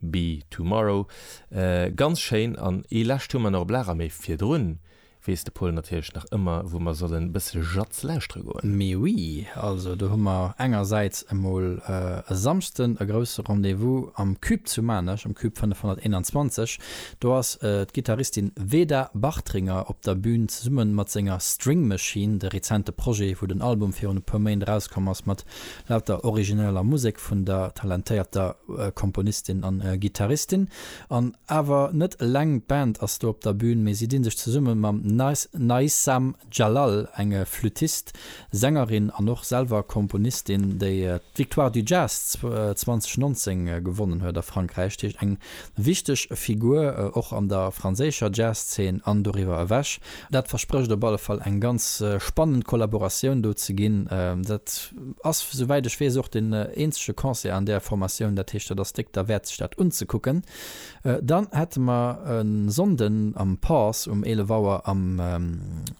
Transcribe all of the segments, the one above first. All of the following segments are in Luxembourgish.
Be Tomorrow, ganz schéin, an ee lescht hu mer nach op Lager, mee virdrun weess de Paul natierlech nach ëmmer wou mer sollen e bësse jazz lauschtere goen. Mee oui, also do hu mer engersäits emol e Samschden e grousse Rendez-vous am Cube zu Maarnech, am Cube 521. Do ass d'Gittaristin Veda Bartringer op der Bühn zesumme mat senger String Machine, de rezente Projet, wou den Album virun e puer Méint erauskomm ass, mat laut der origineller Musek vun der talentéierter Komponistin an Gittaristin. An awer net eleng d'Band ass do op der Bühn, mee si dinn sech zesumme mam Naissam Jalal, engem Flüttist, Sängerin an och selwer Komponistin, déi d'Victoire du Jazz 2019 gewonnen huet a Frankräich, dat heescht eng Wichteg Figur och an der franséischer Jazz-Zeen an doriwwer ewech. Dat versprécht op alle Fall eng ganz spannend Kollaboratioun do ze ginn. Dat ass, souwäit ech weess, och den eenzege Concert an där Formatioun. Dat heescht, dat ass déck derwäert, sech dat unzekucken. Dann hätte mer e Sonnden am Pause um 11 Auer am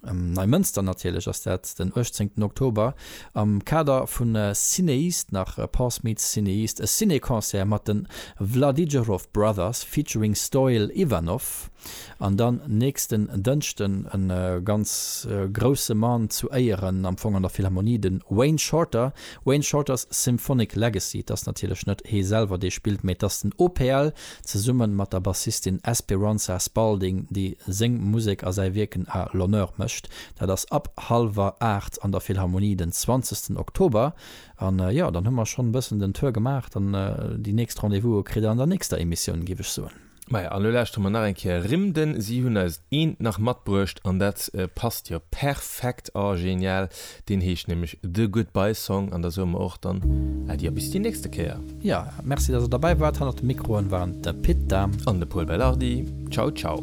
Neimënster, natierlech ass dat den 18 Oktober, Am Kader vu Cinéist nach Pass meets Cinéist, e Ciné-Concert mat de Vladijerov Brothers featuring Stoil Ivanov. An dann nächsten Dënschden e ganz grousse Mann zu Éieren am Fong an der Philharmonie, de Wayne Shorter, Wayne Shorter's Symphonic Legacy. Et ass natierlech net hee selwer dee spillt, mee et ass den OPL zesummen mat der Bassistin Esperanza Spalding, déi seng Musek a säi Wierken à l'honneur mécht. Dat ass ab halwer 8 an der Philharmonie den 20. Oktober. An jo, dann hu mer schonn e bëssen den Tour gemaach. Dann déi nächst Rendez-vouse kritt der an der nächster Emissioun, géif ech soen. Maja, an elo lauschteren mer nach eng Kéier rëm den. Si hunn eis eent nach matbruecht an dat passt jo perfekt. Oh genial, deen heescht nämlech The Goodbye Song an da soe mer och dann Äddi a bis déi nächste Kéier. Jo, merci dass der derbäi waart. Hannert de Mikroen waren de Pit Dahm. An de Pol Belardi. Ciao ciao.